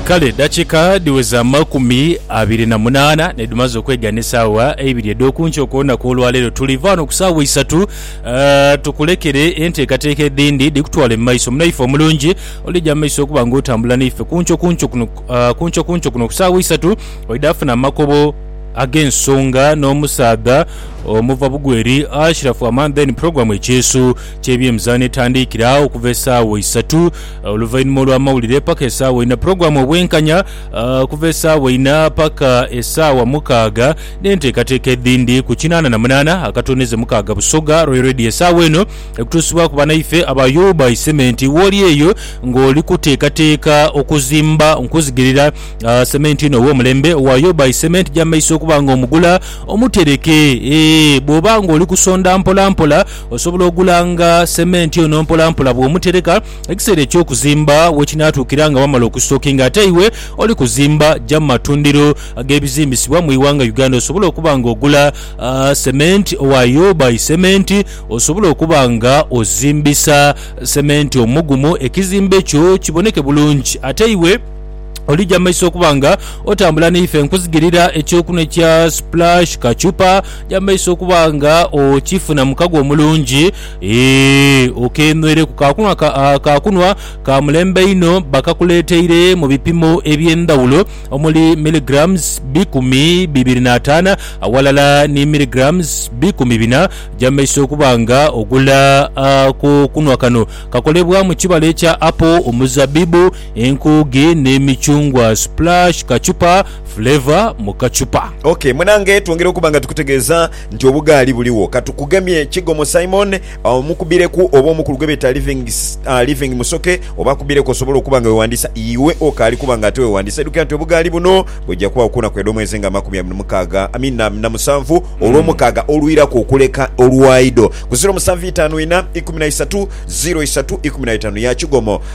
Kale dakika dhiweza amakumi abiri na munaana nedhumaze okwegana esaawa eibiri edhoku nkyo ku lunaku olwaleero. Tuli va ghano ku saawa isatu tukulekere enteekateeka edhindi dhikutwale mu maiso. Munaife omulungi olija mu maiso okuba nga otambula naife ku nkyo ku nkyo kuno ku nkyo ku nkyo kuno ku saawa isatu oidha funa amakobo ag'ensonga n'omusaadha omuva bugwe eri Ashiraf Aman then program ekyeeso. ky'ebyemizaano etandiikira okuva esaawa isatu oluvainhuma olw'amawulire paka esaawa ina, pulogulaamu Obwenkanya okuva esaawa ina paka esaawa mukaaga, n'enteekateeka edhindi ku kinaana na munaana akatoneze mukaaga Busoga Royal Radio. Esaawa eno ekutuusibwaku banaife aba Yubai Cement. Wooli eyo ng'oli kuteekateeka okuzimba, nkuzigirira sementi ono ow'omulembe owa Yubai Cement gy'amaiso okuba ng'omugula omutereke. Eeh bw'oba ng'oli kusonda mpolampola, Osobola ogulanga sementi ono mpolampola bw'omutereka ekiseera eky'okuzimba wekinaatuukira nga wamala okusitookinga ate iwe oli kuzimba. Ja mu matundiro ag'ebizimbisibwa mu ighanga Uganda osobole okuba nga ogula sementi owayo by sementi osobole okuba nga ozimbisa sementi omugumu ekizimbe kyo kiboneke bulungi ate iwe Olija mu maiso okuba nga otambula naife nkuzigirira ekyokunwa ekya Splash Kachupa. Ja mu maiso okuba nga okifuna mu kago omulungi ee okenhwereku. Kakunwa ka, ah, kakunwa ka mulembe inho bakakuleeteire mu bipimo eby'endhawulo omuli milligrams bikumi bibiri n'ataana aghalala ni milligrams bikumi bina. Ja mu maiso okuba nga ogula akokunwa kano. Kakolebwa mu kibala ekya apple, omuzabibu, Enkuugi ni micungwa splash kacupa flavour mu kacupa. Ok munange twongere okuba nga tukutegeeza nti obugaali buligho katukugemye Kigomo Simon omukubireku oba omukulu gwebeeta Living Living Musoke oba akubireku osobole okuba nga wewandiisa iwe okaali kuba nga ate wewandiisa edukira nti obugaali buno bujja kubagho kunaku edhomwezi nga amakumi abiri mukaaga I mean na musanvu olwomukaaga olwiraku okuleka olwaido ku ziro musanvu itaanu ina ikumi na isatu ziro isatu ikumi na itaanu ya Kigomo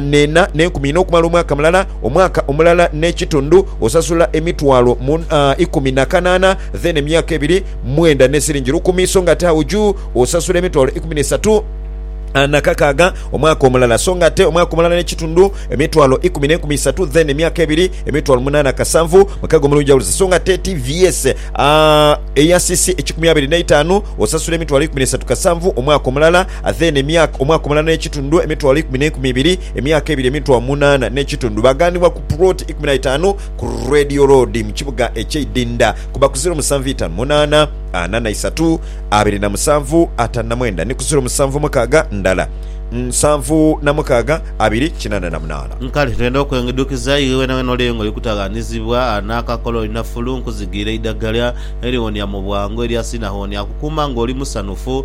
n'ena n'enkumi ina okumala omwaka mulala, omwaka omulala n'ekitundu osasula emitwalo ikumi na kanaana, then emyaka ebiri mwenda n'esiringi lukumi, so ng'ate agho juu osasula emitwalo ikumi n'eisatu na kakaaga omwaka omulala, so ng'ate omwaka omulala n'ekitundu emitwalo ikumi n'enkumi isatu, then emyaka ebiri emitwalo munaana kasanvu mukaga omulungi aghulise, so ng'ate ti vyese eya sisi ekikumi abiri n'eitaanu osasula emitwalo ikumi n'eisatu kasanvu omwaka omulala. Athene, emyaka omwaka omulala n'ekitundu, emitwalo ikumi n'enkumi ibiri, emyaka ebiri, emitwalo munaana n'ekitundu. Baaghanibwa ku puloti ikumi na itaanu ku Radio Road mu kibuga eky'e Idinda ku ba ku ziro musanvu itaanu munaana ana na isatu abiri na musanvu ataanu na mwenda ni ku ziro musanvu mukaaga ndala nsanvu na mukaaga abiri kinaana na munaana. Nkale twenda okwengidhukiza iwe wenawena oli eyo nga oli kutaghanizibwa n'akakola olina fulu, nkuzigiire eidagala eriwonia mu bwangu eryasinha hoonia kukuuma ng'oli musanhufu.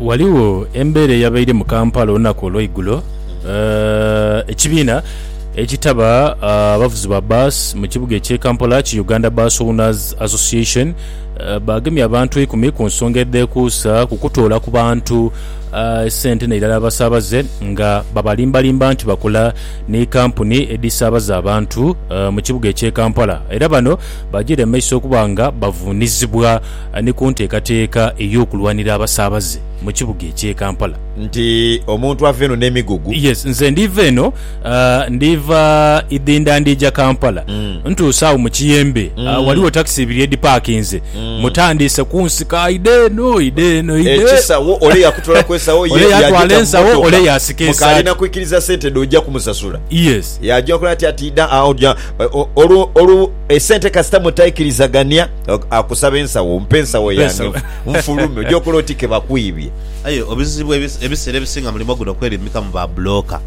Ghaligho embeera eyabaire mu Kampala olunaku olweigulo ekibiina ekitaba abavuzi ba bus mu kibuga ekye Kampala ki Uganda Bus Owners Association bagemye abantu eikumi ku nsonga edhekuusa ku kutoola ku bantu sente nairala abasabaze nga babalimbalimba nti bakola ni kampuni edhisabaza abantu mu kibuga ekye Kampala era bano bajiire mu maiso okuba nga bavunizibwa ni ku nteekateeka ey'okulwanira abasaabaze mu kibuga eky'e Kampala. Nti omuntu ava eno n'emigugu. Yes, nze ndiiva eno, ndiiva Idhinda ndiija Kampala. Ntuuse agho mu kiyembe, ghaligho takisi ibiri edhipaakinze. Mutandiise kunsika, aidha eno, aidha eno, aidha. Ekisawo, ole yakutwala ku esawo ye, yaagita mu mmotoka, mukaali na kwikiriza sente dho oja kumusasula. Yes. Yaaja okola atya? Ati idha agho, olwo esente kasita mutaikirizagania. Akusaba ensawo, mpa ensawo yange nfulume. Oja okola oti ke bakwibye. Aye obuzibu ebiseera ebisinga mulimo guno kwerimika mu ba bulooka.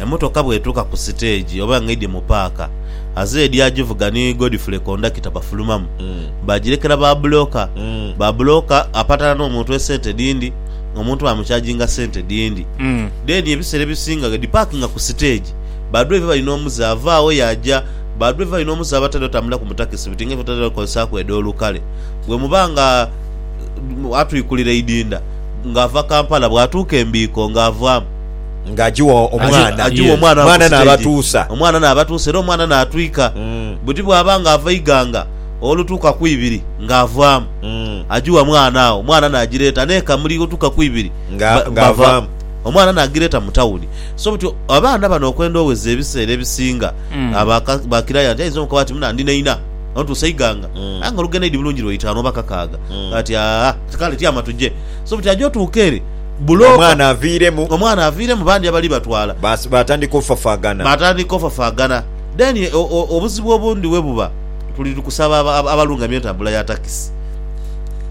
Emotoka bw'etuuka ku siteegi oba ng'eidhye mu paaka, azeedi agivuga ni Godfrey kondakita bafulumamu baagirekera ba bulooka. Ba bulooka apatana n'omuntu esente dhindi, omuntu baamukyajinga sente dhindi. Dheeni ebiseera ebisinga ghedipaakinga ku siteegi, ba dwaiva bali n'omuze avaagho yaaja. Ba driver inho omuze abatali otambulira ku mu takisi buti nga ife tutera okozesaaku edh'olu kale. Bwe muba nga atwikulira eidinda nga ava Kampala bwatuuka e Mbiiko nga avaamu. Nga agiwa omwana. Agiwa omwana ku stage. Omwana naabatuusa era omwana naatwika. Buti bwaba nga ava Iganga olutuuka ku ibiri nga avaamu. Agiwa mwana agho omwana naagireeta n'e Kamuli olutuuka ku ibiri nga avaamu. Omwana naagireeta mu tawuni. So buti abaana bano okwenda oweza ebiseera ebisinga bakirayo ati ainza omukoba ati muna ndi naina ontuusa eighanga aye nga olugendo eidhi bulungi lwa itaanu oba kakaaga ati aa kale tyama tuje so buti aja otuuka ere bulooka omwana aviiremu omwana aviiremu bandi abali batwala batandika ofafaagana batandika ofafaagana then obuzibu obundi webuba tuli tukusaba abalungamya entambula ya takisi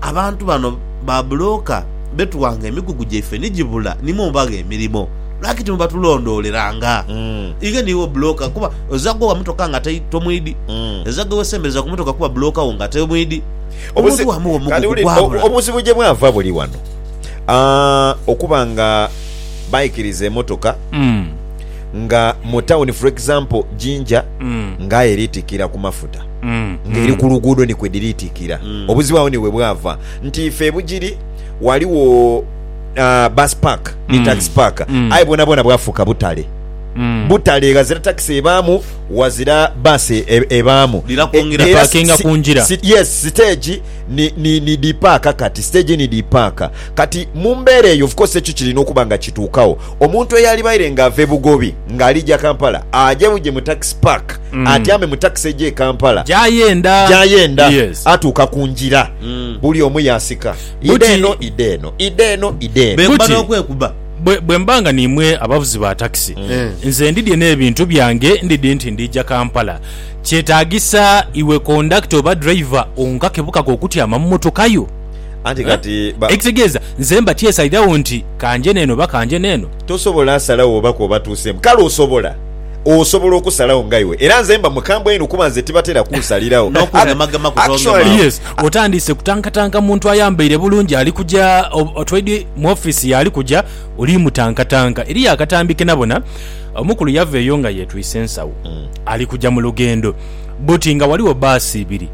abantu bano ba bulooka betuwanga emigugu gyaife ni gibula nimwo mubagha emirimo. Lwaki timubatulondooleranga? Inge niiwe obbulooka kuba oza ghowa mutoka nga atai tomwidhi? Oza ghe wesembereza ku mutoka kuba bbulooka wo nga atai omwidhi? Omuntu wa mugho mugho gugwabula. Obuzibu gye bwava buli wano okuba nga baikiriza emotoka nga mu tawuni for example Jinja nga aye eri tikira ku mafuta nga eri ku luguudo ni kwe dhiri tikira. Obuzibu agho ni we bwava nti ife e Bugiri ghaligho ah, bus park ni tax park aye bwonabwona bwafuuka butale butale ghazira takisi ebaamu ghazira bus e- e- ebaamu Lira kwongera E- era parkinga si- ku ngira. si- yes siteegi ni, ni, ni dipaaka kati siteegi ni dipaaka kati mu mbeera eyo of course ekyo kirina okuba nga kituukawo omuntu eyalibaire nga ava ebugobi ng'alija kampala aje buje mu tax park atyame mu takisi eja e kampala Gyayenda. gyayenda Yes. atuuka ku ngira buli omu yasika Ida Buti- eno, ida eno, ida eno, ida eno. Bwekuba Buti- n'okwekuba. Bwe, bwe mba nga niimwe abavuzi ba takisi, nze ndidye n'ebintu byange ndidhi nti ndiija Kampala. Kyetaagisa iwe kondakita oba driver onkake bukake okutyama mu motoka yo. Anti kati ba- Ekitegeeza nze mba tyesalirawo nti kanje n'eno oba kanje n'eno. tosobola asalawo oba kw'oba tuuseemu. Kale osobola. Osobola okusalagho nga iwe. Era nze mba mukambwe inho kuba nze tibatera kunsaliragho. N'okugemaagema kutoogemaagho. Yes, otandiise kutankatanka muntu ayambaire bulungi ali kuja otwaidhi mu office ye ali kuja oli mutankatanka. Eriyo akatambi ke nabona, omukulu yava eyo nga yetwise ensawo ali kuja mu lugendo but nga ghaligho bbaasi ibiri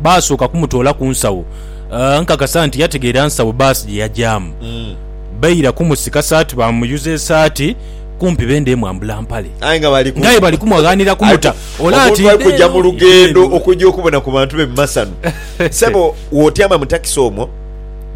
baasooka kumutoola ku nsawo. Nkakasa nti yategeera nsawo bbaasi gye yajaamu. Baira kumusika saati baamuyuza esaati. kumpi bendhe mwambula mpale. Aye nga bali ku. Nga aye bali kumwaghanira kumuta. Ole ati. Omuntu ali kuja mu lughendo okuja okubona ku bantu be mu masanu. Ssebo wotyama mu takisi omwo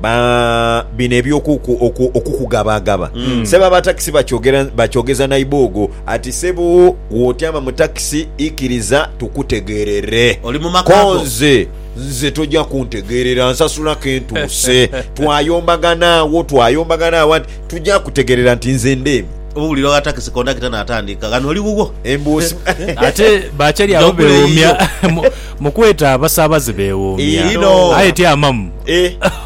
ba bino eby'okuku okukugabaagaba. Ssebo aba takisi bakyogera bakyogeza naiboogo ati ssebo wotyama mu takisi ikiriza tukutegerere. Oli mu maka go. Konze nze toja kuntegerera nsasula kentuuse. Twayombagana agho twayombagana agho anti. Tuja kutegerera nti nze ndeeme. Obubuliro gha takisi kondakita naatandika, Ghano oli wuwo? Embuusi. Ate bakyali agho bewoomya mu kweta abasaabaze bewoomya. Inho. Aye ti amamu.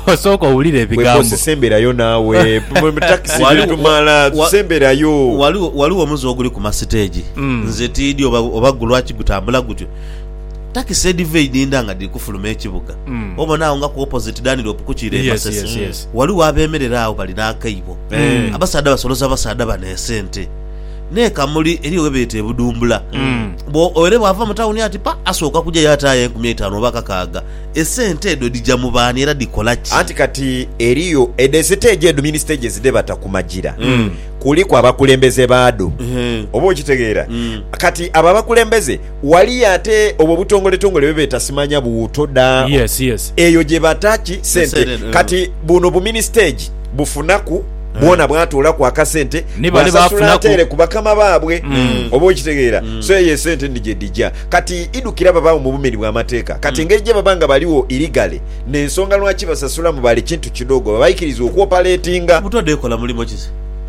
Osooka owulire ebigambo. Gwe kozesa embera yo naawe. Mu takisi bye tumala tusa embera yo. Ghaligho omuze oguli ku masiteegi, nze tiidhi oba gulwaki gutambula gutyo. Takisi edhiva eidhindha nga dhiri kufuluma ekibuga, obona agho nga ku opposite Danrop kukiira e Masese, ghaligho abeemerera agho bali n'akaibo. Abasaadha basoloza abasaadha bano esente. N'e Kamuli eriyo ghe beeta e Budumbula. Bwoere bw'ava mu tawuni ati pa, asooka kujayo ataayo enkumi eitaanu oba kakaaga. Esente edho dhija mu baani era dhikola ki? Anti kati eriyo edho esiteegi edho mini stages dhe bata ku magira, kuliku abakulembeze baadho. Oba okitegeera? Kati abo abakulembeze. Waliyo ate obwo obutongoletongole bwe beeta simanya buwuuto da? Yes, yes. Eyo gye bata ki? Sente. Esente, eh. Kati buno bu ministage bufunaku, bwona bwatoolaku akasente, Ni bale bwasasula baafunaku. ateere ku bakama baabwe. Oba okitegeera? So eyo esente ni gye dhija. Kati idhukira babaagho mu bumeni bw'amateeka. Kati engeri gye baba nga baligho illegally, n'ensonga lwaki basasulamu bali kintu kidoogo, baba baikiriza okwopaletinga. Obuto dhekola mulimo ki se?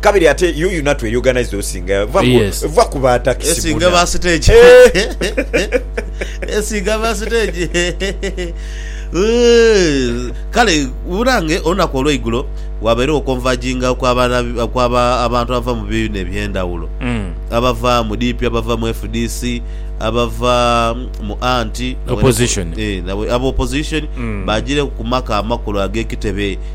Kabiri ate you you natu eri organized osinga yes. va ku ba taxi esinga ba stage esinga ba stage kale burange olunaku olweigulo wabeerewo okonvajinga kwaba abantu abava mu bibiina ebyendawulo mm. abava mu DP abava mu FDC abava mu anti abo opposition eh, mm. bajireku kumaka amakulu agekitebe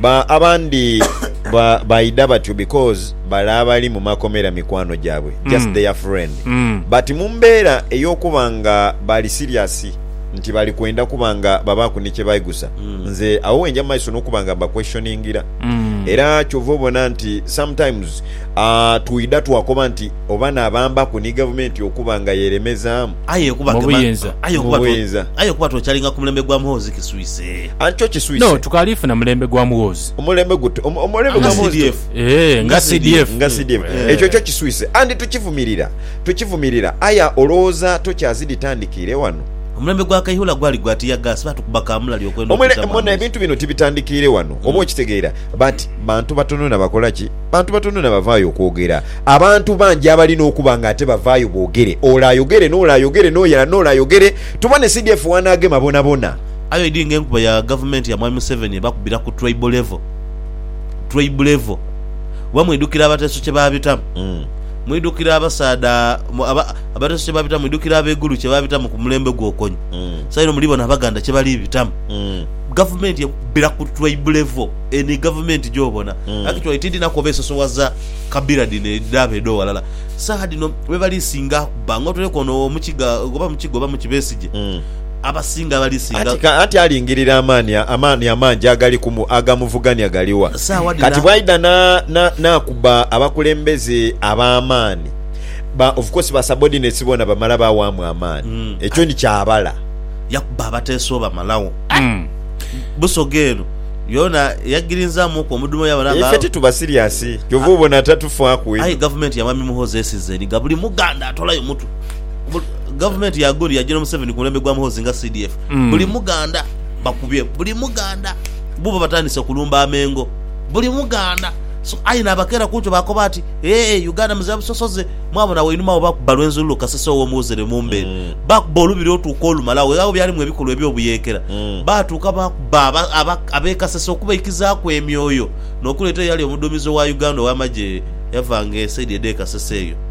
Ba abandi ba baidha batyo because bale abali mu makomera mikwano gyabwe just mm. their friend mm. but mu mbeera ey'okuba nga bali serious nti bali kwenda kuba nga babaaku ni kye baigusa mm. nze awo wenja mu maiso n'okuba nga mbaquestioningira mm. era kyova obona nti sometimes uh, twidha twakoba nti oba nabambaku ni gavumenti okuba nga yeremezaamu aye okuba twekyalinga ku mulembe gwa muhoozi kiswise Anti kyo kiswise. No, tukaali funa mulembe gwa mughoozi. Omulembe gute? Omulembe gwa mughoozi gute? Eeh, nga CDF. Nga CDF. Ekyo kyo kiswise. Anti tukivumirira. Tukivumirira. Aye olowooza tokyazi dhitandikiire wano? Omulembe gwa Kaihura gwali gwa tiyagaasi, baatukuba kaamulali okwenda okutamu amaiso. Mona, ebintu bino tibitandikiire wano, oba okitegeera. But bantu batono na bakola ki? Bantu batono na bavaayo okwogera. Abantu bangi abalina okuba nga ate bavaayo boogere. Ole ayogere, n'ole ayogere, n'oyala n'ole ayogere, tubone CDF w'anaagema bonabona. Aye oidhi nga enkuba ya gavumenti ya mwami Museveni ebakubira ku tribal level, tribe level, kuba mwidhukira abateeso kye baabitamu, mwidhukira abasaadha aba, abateeso kye baabitamu, mwidhukira ab'eigulu kye baabitamu ku mulembe gwo kony, saino muli bona Abaganda kye bali bitamu. Gavumenti ekubira ku tribe level, eno ye gavumenti gy'obona. Actually tiidhi na koba esosowaza kabira dhino edhaabo edh'owalala. Saagha dhino be bali singa akuba, nga otoireku ono Omukiga, oba Mukiga oba Muki, Besigye. abasinga bali singa. Anti, anti alingirira amaani, amaani amangi agali ku mu, agamuvugania gali wa? Sawa dhina. Kati bwaidha na, na, n'akuba abakulembeze ab'amaani, ba, of course ba subordinates boona bamala baawaamu amaani. Mm. Ekyo ni kyabala. Yakuba abateeso bamalagho. Aye, Busoga eno yoona yagirinzaamuku omudhumo yabona nga. Ife tituba serious. Kyova obona tatufaaku Aye edho. gavumenti ya Mwami Muhoozi esizeni nga buli Muganda atolayo mutwe. Gavumenti ya Gori yagira Museveni ku mulembe gwa Muhoozi nga CDF. Mm. Buli Muganda bakubye, buli Muganda bubo batandise kulumba amengo, buli Muganda so, aye nabakeera kunkyo bakoba ati ee eh, Uganda muzira busosoze. Mwabona wainuma awo bakuba Lwenzululu Kasese ow'omuwozere Mumbe, mm. bakuba olubiri otuuka olumala weghagho byalimu ebikolwa eby'obuyeekera, mm. baatuuka bakuba ab'e Kasese okubaikizaaku emyoyo n'okuleeta eyali omuduumizi owa Uganda ow'amagye yavanga esaidi edh'e Kasese eyo.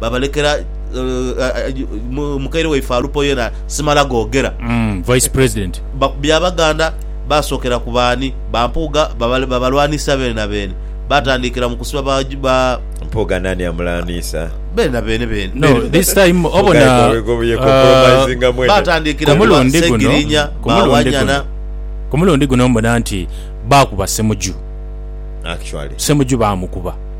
babalekera mukaire waife Alupo yena simala gogera. Vice President. Byabaganda basookera ku baani? Ba Mpuuga babalwaniisa beene na beene. Baatandiikira mu kusiba ba. Mpuuga naani amulwaniisa? Beene na beene beene. No, this time obona ku mulundi guno, ku mulundi guno mbona nti baakuba Ssemuju. Actually. Ssemuju baamukuba.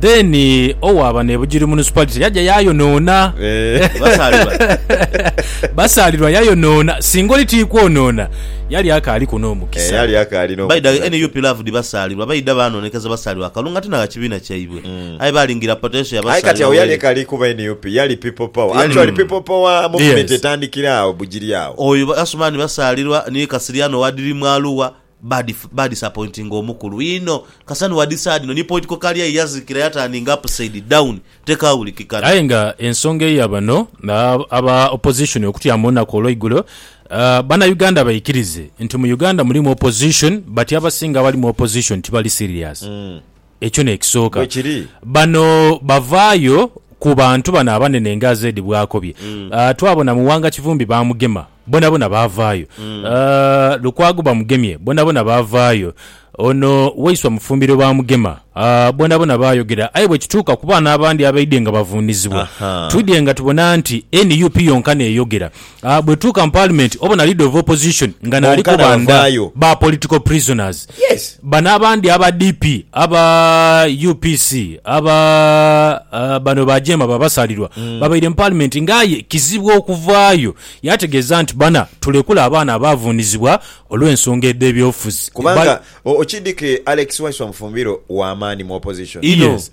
Then owaaba ne Bugiri Municipality yaja yayonoona. Eeh, basaalirwa. Basaalirwa yayonoona. Singa oli tiikwonoona, yali akaaliku Eeh, n'omukisa. yali akaali Baidha n'omukisa ghe. nup loved Basaalirwa baidha baanoonekeza Basaalirwa akalungu ate n'agha kibiina kyaibwe. Mm. Aye baalingira potential ya Aye kati Basaalirwa agho yali bw'eri. ekaali kuba nup, yali People Power. Yali. Actually People Power movement Yes. etandikira agho Bugiri agho. Oyo Asumani Basaalirwa ni Kasirye ano owa Dirimu Arua, Bad ba disappointing omukulu inho kasanu wadi sad no ni point ko kali aye yazikira ya turning upside down tekawulikikana. Aye nga ensonga eya bano aba opposition okutyama olunaku olweigulo, bana Uganda baikirize nti mu Uganda mulimu opposition but abasinga abali mu opposition tibali serious. Ekyo n'ekisooka. Bano bavaayo ku bantu bano abanene nga Zed bw'akobye. Twabona Muwanga Kivumbi baamugema, bonabona baavaayo. Lukwago bamugemye, bonabona baavaayo. Ono Waiswa Mufumbiro baamugema, bonabona baayogera. Aye bwe kituuka ku baana abandi abaidhye nga bavunizibwa, twidhye nga tubona nti nup yonka n'eyogera. Bwe tutuuka mu Paalimenti obona Leader of Opposition nga naali Bonkana kubanda bavaayo. ba political prisoners. Yes. Bano abandi aba DP, aba UPC, aba ah, bano ba Jeema ba Basaalirwa babaire mu Paalimenti nga aye kizibu okuvaayo. Yategeeza nti bana tulekule abaana abaavuunizibwa olw'ensonga edh'ebyobufuzi. Kubanga Ba- o- okidhike Alex Waiswa Mufumbiro wa maani mu Opposition. Inho. Yes.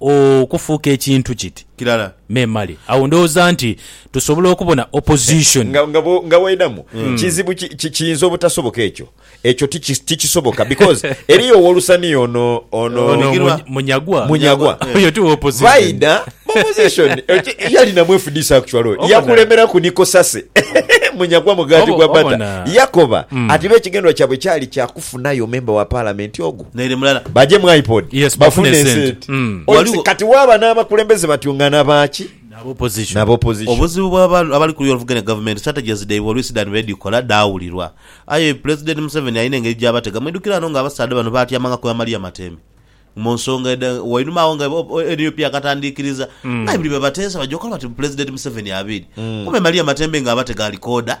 okufuuka ekintu kit Kilala. memale. Agho ndhoghoza nti tusobola okubona opposition. Nga, nga, nga bw'oidhamu, kizibu ki, ki, kiyinza obutasoboka ekyo. Ekyo tiki, tikisoboka, because eriyo ow'olusaniya ono, ono. Ono Bigirwa. Muny- Munyagwa. Munyagwa. Munyagwa. Oyo ti w'opposition. Baidha mu opposition. Eki- Yalina mu FDC actually oyo. Obona. Yakulemeraku Niko Sase. Munyagwa mugaati Obo- gwa bata. obona. Yakoba Mm. ati bo ekigendererwa kyabwe kyali kya kufunayo memba wa Palamenti ogwo. Naire mulala. Bajemu iPod Yes, bafune bafune esente. esente. Mm. Oyo Waliwo- Kati waaba n'abakulembeze batyo nga na baaki? Naba opposition. Naba opposition. Obuzibu bwa ba- abali kuluya oluvuganya gavumenti strategies dhaibwe oluisi dhan bwedhikola dhaawulirwa. Aye Pulezidenti Museveni alina engeri gy'abatega. Mwidhukire ano nga abasaadha bano baatyamangako ya Maria Matemi mu nsonga edha wainuma agho nga o- o- nup yakatandiikiriza nga aye buli lwe bateesa bajja okola bati Pulezidenti Museveni abiiri. Kumbe Maria Matembe nga abatega alikooda.